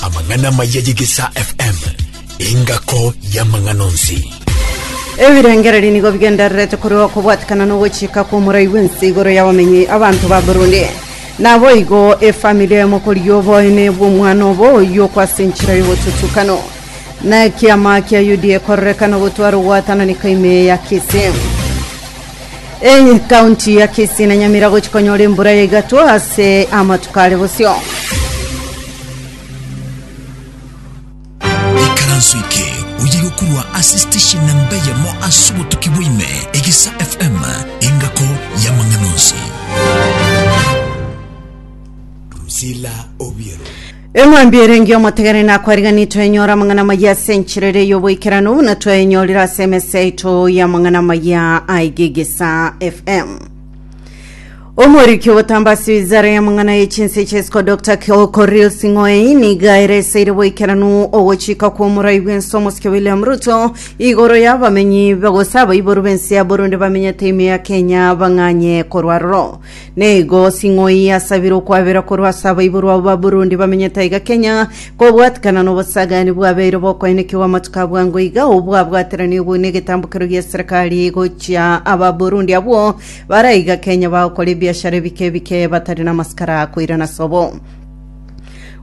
Amang'ana maya y'Egesaa FM, engako y'amang'ana onsi. ebirengererio nigo bigendererete korwa okobwatikana na ogochika kw'omorai bw'ense igoro y'abamenyi abanto ba burundi naboigo efamili eye mokori y'oboene bw'omwana obo oyoko ase enchera y'obotutukano na ekiama kia uda ekorerekana gotwara ogwatanani kaime ya kisi Ekaunti ya Kisii na Nyamira gochia konyora embura ya igato ase amatuko are bosio. ikaranso eke oye gokurwa ase station namba eyemo ase obotuki bwaime egesa fm engako y'amang'ana onsi Priscilla Obiero. Eng'wanbi ere engi'omotegereri nakwariganetwe enyore amang'ana amayia ase enchera ere y'oboikeranu, buna twayenyorire ase emesa yaito y'amang'ana amayia a Igigisa FM. Omoriki ogotamba ase wizara y'amang'ana ye chinse echi esiko Dr. Kyo- Koril Sing'oei niga ereseire boikeranu ogochika kw'omorai bw'ense omosike William Ruto igoro y'abamenyi ba- gose abaiboru b'ense ya Burundi bamenyete ime ya Kenya bang'anye korwa aroro. Nigo sing'oi yasabire okwabera korwa ase abaiborwa abo ba Burundi bamenyete aiga Kenya, kobwatikana n'obosagani bwabeire bokoenekiwa amatuko a bwango iga, obwabwateranirie buna egetambokero gi'eserekari gochia aba Burundi abwo bare aiga Kenya bagokora ebiashara ebike ebike batari namasikara koirana sobo.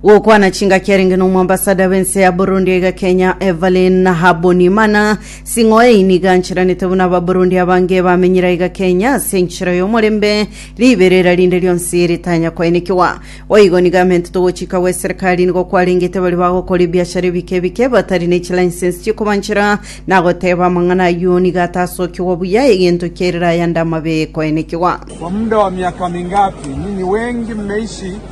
gokwana chingaki arenge nomwambasada b'ense ya burundi aiga kenya evelyn habonimana sing'o eye niga anchiranete buna ababurundi abange bamenyire aiga kenya ase enchera y'omorembe riberera rinde rionsi ritanya koenekiwa boigo niga amente togochika gwe serikali nigo kwarengete bari bagokora ebiashara ebike ebike batari ne chilicense chikobanchera nagoteba amang'ana ayio niga atasokiwa buya egento kiairire ayande amabe koenekiwa Kwa muda wa miaka mingapi ninyi wengi mmeishi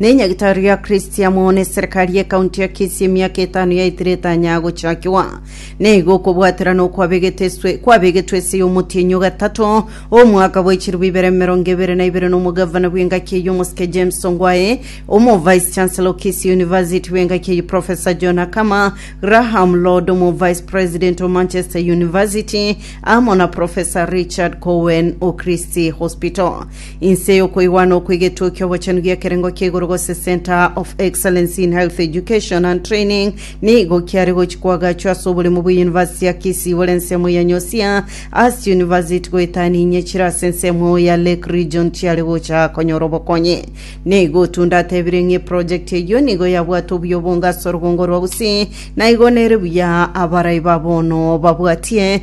Ne nyagitari ya Christian mone serikali ye county ya Kisii emiaka etano yaitire etanya gochakiwa. Ne igo okobwatera na okwabegete eswe kwabegetwe ase y'omotienyi o gatato omwaka bwa echiribu ibere emerongo ebere na ibere na omogavana bw'engaki eye omosike James Ongwae, omo vice chancellor o Kisii University bw'engaki eye Professor John Akama, Graham Lord omo vice president o Manchester University amo na Professor Richard Cowen o Christie Hospital. Inse y'okoigwana okwe egetwe ki'obochenu gi'ekerengo kia igoro gose Centre of Excellency in Health Education and Training nigo kiare gochi kwagachwa ase oboremu bwe University ya Kisii bore ensemo ya Nyosia Ass University goetania inye chire ase ensemo ya Lake Region chiare gocha konyora obokonyi. Nigo Tunda atebire ng'a eproject eyio nigo yabwate obuya obonge ase orugongo rwa Gusii na igo nere buya abarai ba bono babwatie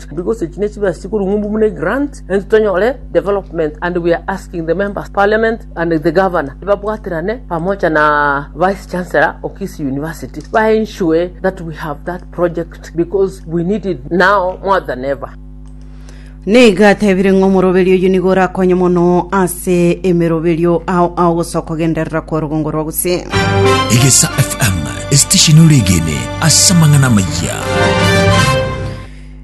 because echi nechibesa chikorung'wa mbu buna egrant ento tonyore development and we are asking the members parliament and the governor babwaterane pamoja na vice chancellor of Kisii university ba ensure that we have that project because we need it now more than ever Nigo atebire ng'a omoroberi oyio nigo orakonye mono ase emeroberio ao ao gosoa kogenderera kwa rugongo rwa gusii Egesa FM, esitesheni ore egene ase amang'ana amayia.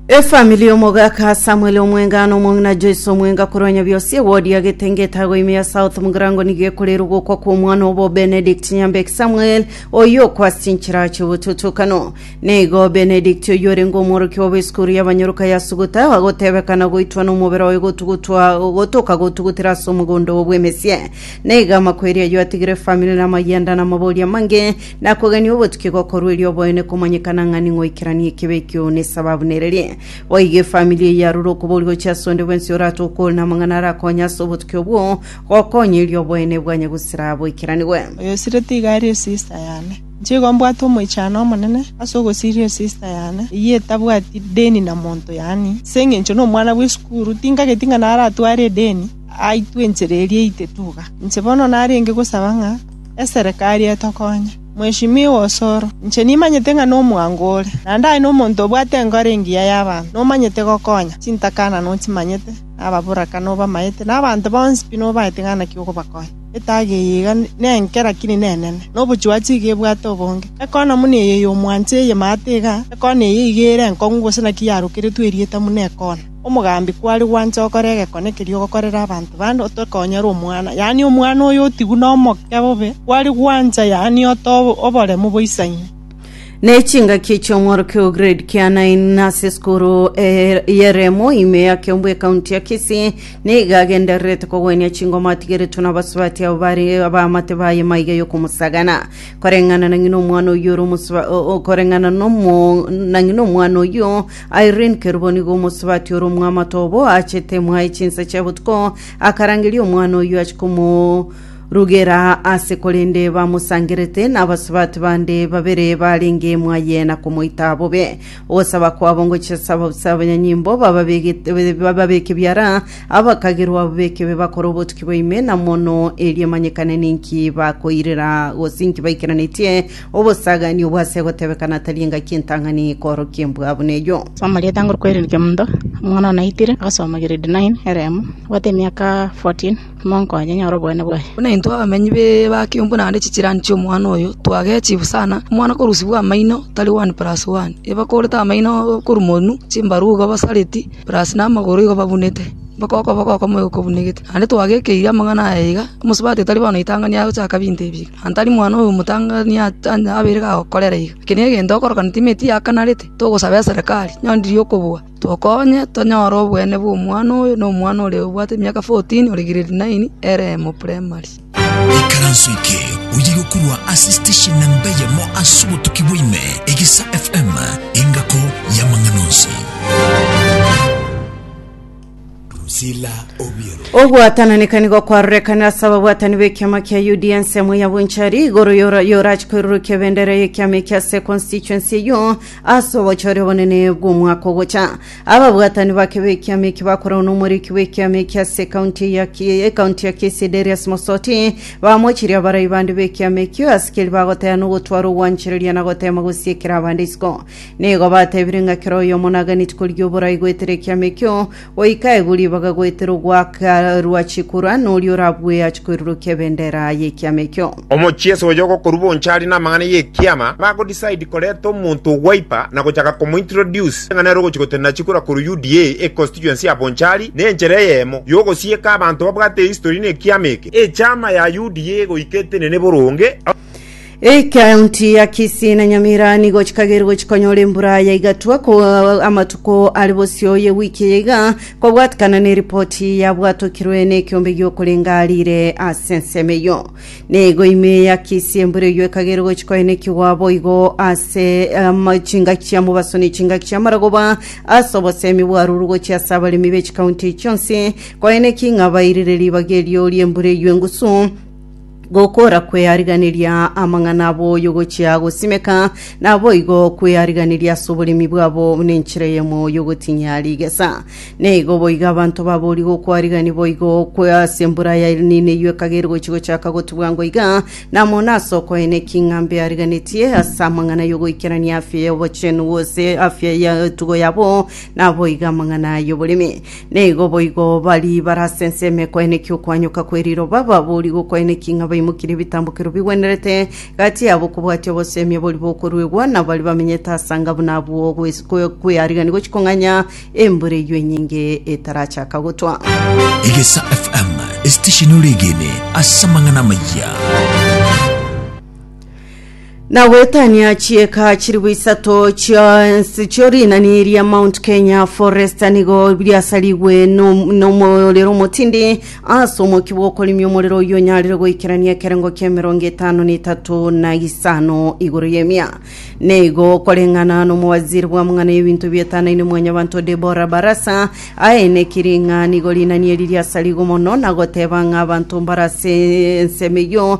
Efamili y'omogaka Samuel omwenga na omong'ina Joyce omwenga korwa Nyabiosi ewodi ya Getenge etago ime ya South Mugirango nigo ekorera ogokwa kw'omwana obo Benedict Nyambeki Samuel oyio okwa ase chinchera chi'obotutukano. Nigo Benedict oyio orenge omworokia obo esukuru y'abanyoroka ya Suguta agotebekana goitwa n'omobere oye gotugutwa gotoka gotugutera ase omogondo oye bw'emesie. Nigo amakweri ayio atigire efamili na amayanda na amabori amange Na kogania obotuki gokorwa erio oboene komanyekana ng'a ning'o oikeranie ekibe ekio nesababu nererie. Boigo efamiri eyio yarure okobori gochia ase onde bwensi oratoe okori namang'ana arakonye ase obotuki obwo gokonya erio oboene bwanye gosira boikeranigwe. Oyosire tiga arie esista yane. Inche igo mbwate omoichano omonene ase ogosiria esista yane, eyio etabwati deni na monto, yaani, ase engencho nomwana bw'esukuru, tingageti ng'a naratware edeni aitwe enchera eria eite tuga. Inche bono narenge gosaba ng'a. Eserekari etokonye, Mweshimiwa Osoro, inche nimanyete ng'a nomwango ore, naende aye nomonto obwate enkoro engiya y'abanto, nomanyete gokonya chintakana nochimanyete, na ababoraka nobamaete, na abanto bonsi pi nobaete ng'a naki okobakonya. Etaga eye iga nenke, lakini nenene, na obochuachi iga ebwate obonge. Ekona buna eye y'omwancha eye maate iga, ekona eye iga ere enkong'u gose naki yarokeretwe erieta buna ekona. Omogambi kware gwancha gokora egekone keria ogokorera abanto bande, otoke onyare omwana, yaani omwana oyo otigwe nomokia bobe, kware gwancha, yaani ote oboremu bwa isang'ia. Ne chingaki chi'omworokia o grade kia nine ase esukuru y'eremo ime ya Kiambu ekaunti ya Kisii nigo agendererete kogwenia chingoma atigeretwe n'abasubati abo bare abaamate baye maiga y'okomosagana koreng'ana na ng'ina omwana oyio ore omosuba koreng'ana nomo na ng'ina omwana oyio Irene Kerubo nigo omosubati ore omwamato obo achete mwaye chinsa chia botuko akarangeria omwana oyio achi komorugera ase korende bamosangerete n'abasubati bande babere barenge mwaye na komoita bobe. Ogosaba kwabo ngochia ase ababusa abanyanyimbo bababegete- bababeke biara abakagerwa babekebe bakore obotuki bwa ime na mono erio emanyekane ninki bakoirera gose inki baikeranetie Obosaaganio bw'ase gotebekana tari engaki entang'ani koorokia embwa buna eyio. Soma rieta nguru kwerirokia omonto omwana one aitire agasoma grade nine eremo abwate emiaka 14 monka oye nyore obogene bwaye. Buna intwe abamenyi be Bakiombu naende chichirani chi'omwana oyo twagechiwu sana, omwana okorusibwa amaino tari one plus one, eba korete amaino okorumonu, chimbaru igo basareti plus na amagoro igo babunete, mpaka okoboko okomoe okobunegete. Naende twagekeiri amang'ana aya iga, omosubati tari bono oitang'ani agochaka binto ebi iga. Aye tari mwana oyo omotang'ani abeire gagokorera iga. Eke negento okorokana timeti yakanarete, togosaba eserekari, nyoriria okobua, tokonye tonyore obweene bw'omwana oyo na omwana oria obwate emiaka fourtini ore grade naini Eremo Primary. Ekaranso eke oye gokorwa ase station namba eyemo ase obotuki bwa ime, Egesa FM, engako y'amang'ana onsi. Drusilla Obiero. Ogwatananeka nigo kwarorekanire ase ababwatani b'ekiama kia UDA ensemo ya Bonchari igoro yora- yorachi koirurukia ebendera y'ekiama eki ase constituency eyio ase obochori obonene bw'omwaka ogocha. Ababwatani bake b'ekiama eki bakoragwa n'omoriki bw'ekiama eki ase ekaunti ya Ki- ekaunti ya Kisii Darius Mosoti bamochirie abarai bande b'ekiama ekio asikeri bagotaya nogotwara ogwanchereria na goteema gosiekera abande isiko. Nigo batebire ng'a kera oyomo naganeti koria oborai goetera ekiama ekio, goika egu ribaga goetera ogwaka rwachi korwa, noria orabue ache koirurukia ebendera y'ekiama ekio. Omochieso oyo ogokorwa bonchari namang'ana y'ekiama bago decide koreta omonto ogwaipa na gochaka komo introduce ng'a nere ogochi gotenena chikura korwa UDA e constituency ya Bonchari na enchera eyemo yogosieka abanto babwate history na ekiama eke. Echama ya UDA goika etenene boronge. Ekaunti ya Kisii na Nyamira nigo chikagerigwe chikonyora embura ya igatwa ko amatuko ari bosio ye wiki eye iga kobwatikana na eripoti yabwatokirwe na ekiombe giokorenga arire ase ensemo eyo. Nigo ime ya Kisii embura eyio ekagerigwe chikoenekigwa boigo ase ama- chingaki chia mobaso ne chingaki chia maragoba ase obosemi bwarurwe gochia ase abaremi be chikaunti echi chionsi koeneki ng'a bairire ribaga erio ri'embura eyio engusu Gokora kweariganiria amang'ana aboyo gochia gosimeka, naboigo kweariganiria ase oboremi bwabo buna enchera eyemo yogotinyia rigesa. Neigo boigo abanto babori gokwarigani boigo kwe ase embura ya El Nino eyio ekagere gochia gochaka gotubwa ngoiga, namo nase okoena ki ng'a mbeariganetie ase amang'ana yogoikerania afya y'obochenu gose afya y'etugo yabo, naboigo amang'ana y'oboremi. Naigo boigo baria barasenseeme koenekia okoanyoka kwe riroba, baboorigwe okoenekia ng'a baimokirie ebitambokero bigwenerete, gati yabo kobwatia oboseemia boria bokoruegwa, na baria bamenyete ase anga buna abwo gwes- kwe- kwearigania gochia kong'anya embura eyio enyinge etarachaka gotwa. Egesa FM, esitesheni ore egene ase amang'ana amayia. Na gwetania chieka chiribu isato chia ense chio rinani ria Mount Kenya Forest nigo biasarigwe no- nomorero omotindi ase omoki bw'okorimia omorero oyio onyarire goikerania ekerengo kia emerongo etano na etato na isano igoro y'emia. Neigo koreng'ana nomowaziri bw'amang'ana y'ebinto bietanaine Mwanyabanto Deborah Barasa aenekiri ng'a nigo rinani eri riasarigwe mono na goteba ng'a abanto mbare ase ensemo eyio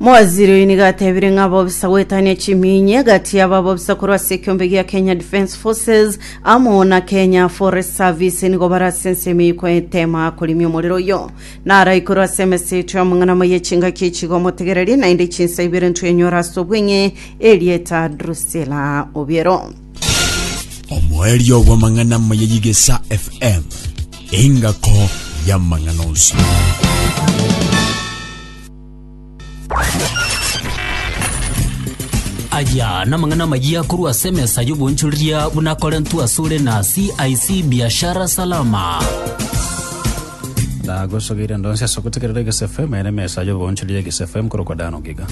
Mowaziri oyio nigo atebire ng'a bobisa goetania chimiinyi egati ya babobisa korwa ase ekeombe gia Kenya Defence Forces amo na Kenya Forest Service nigo bare ase ensemo eye koetema korimia omorero oyio. Naraikorwe ase emeseto y'amang'ana amaya echingaki echiga omotegereri, naende chinsa ibere ntwenyore ase obweng'e erieta Drusilla Obiero. Omoerio bw'amang'ana amaya y'Igesa FM, engako y'amang'ana onsi. aya namang'ana amayia korwa ase emesa y'obonchoreria buna akorentwe asore na cic biashara salama Nagosogeire ndo nse ase ogotegerera Egese FM ere emesa y'oboonchori y'Egese FM korokwa Dan Ogiga.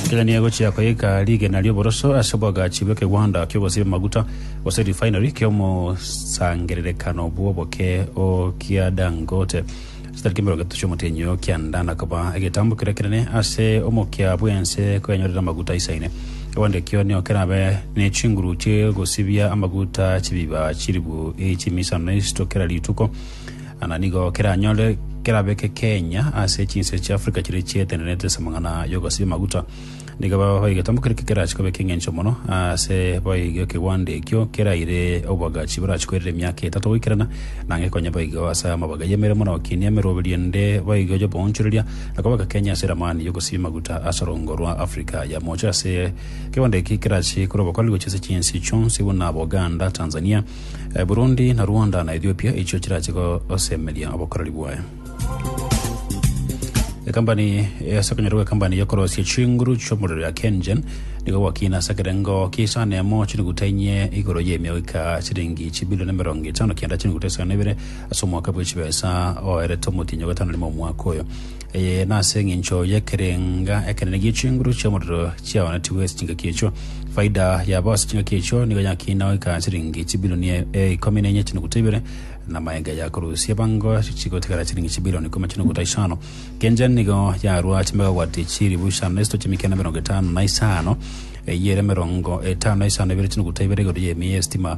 Kenya nigo egochia koika rigena ri'oboroso ase oboagachi bw'ekegwanda ki'ogosiba amaguta gose refinery ki'omosangererekano bw'oboke o kia Dangote chitariki emerongo etato chi'omotenyi o kianda na koba egetambo keria kenene ase omokia bw'ense koenyorera amaguta aisaine. Onde kionio kerabe ne chinguru chie gosibia amaguta chibiba chiribu chi'emisano isito kera rituko, na nigo keranyore kerabe kekenya ase chinse chi'Afrika chiria chietenenete ase amang'ana y'ogosibia amaguta. Nigo babahoe egetomba keria kekerache koba ekeng'encho mono ase boigo ekegwando ekio keraire oboagachi borache koirera emiaka etato goikerana, na ngekonye boigo ase amabaga y'emeremo na okinia emeroberio ende boigo y'oboonchoreria, Akobaka Kenya ase eramani y'ogosibia maguta ase orongo rwa Africa ya mocho ase ekebanda eke kerache korwa obokori gochia ase chinsi chionsi buna Boganda, Tanzania, Burundi na Rwanda na Ethiopia echio chirache gosemeria obokoreri bwaye. Ekambani ase okonyora gw'ekambani y'okorosia chinguru chi'omorero ya KenGen nigo gwakina ase ekerengo ki'isano emo chiriguta inye igoro y'emegoika chiringi chibilioni emerongo etano kianda chiriguta isano na ibere Ase omwaka bwe chibesa oerete omotienyi o gatano rimo omwaka oyo. Eye nase eng'encho y'ekerenga ekenene gie chinguru chi'omorero chiaonetigwe ase chingaki echio. Faida yabo ase chingaki echio nigo yakina goika chiringi chibilioni e- e- ikomi na enye chinuguta ibere, na amayenga yakorusia bango chigotigara chiringi chibilioni ikomi chinuguta isano. Kenja nigo yarwa chimegawati chilifu isano na isatu chi'emekeno emerongo etano na isano, eyio ere emerongo etano na isano na ebere chinuguta ibere igoro y'emiya y'esitima,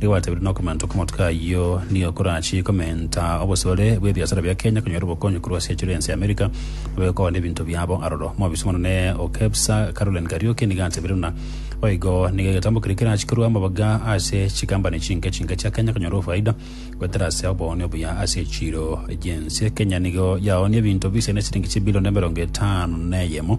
Nigo gwatebirie na okomenta okomotuka ayio nigo korachie komenta obosore bw'ebiasara bia Kenya konyora obokonyi korwa ase chire ense ya Amerika babe kogora nebinto biabo aroro. Omobisa omonene o KEBSA Caroline Kariuki nigo atebirie buna boigo nigo egetambo keria kerachie korue amabaga ase chikampani chinke chinke chia Kenya konyora ofaida goetera ase obooni obuya ase chiro chinse. Kenya nigo yaoonie ebinto bise nesiringi chibilion emerongo etano neyemo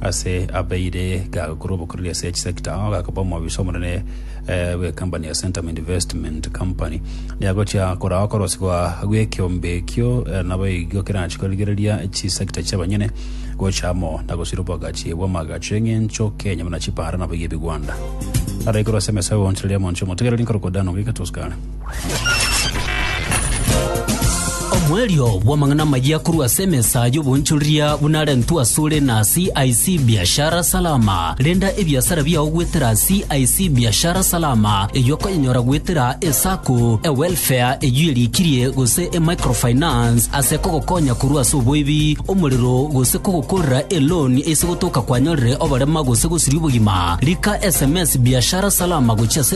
ase abeire gakora obokoreri ase each sector ao gakaba omobisa omonene eh, bw'ekampani ya Centum Investment Company niagochia korao okorosi gwa gw'ekeombe ekio eh, nabo igo kerachi korigereria chisector chi'abanyene gocha amo na gosira obwagachi bw'amagacho eng'encho Kenya buna chipara nabo iga ebigwanda araikoro ase emesa y'ogoonchereria monche omotegereri nkorokwa Dan Ogika Toscana Omoerio bw'amang'ana amayia korwa ase emesa y'oboonchoreria buna arentwe asore na CIC Biashara Salama. Renda ebiasara biao goetera CIC Biashara Salama, eyio okonyenyora goetera eSacco, eWelfare eyio erikirie gose eMicrofinance ase kogokonya korwa ase oboibi, omorero gose kogokorera eloan ase gotoka kwanyorire oborema gose gosiria obogima. Rika sms Biashara Salama gochia ase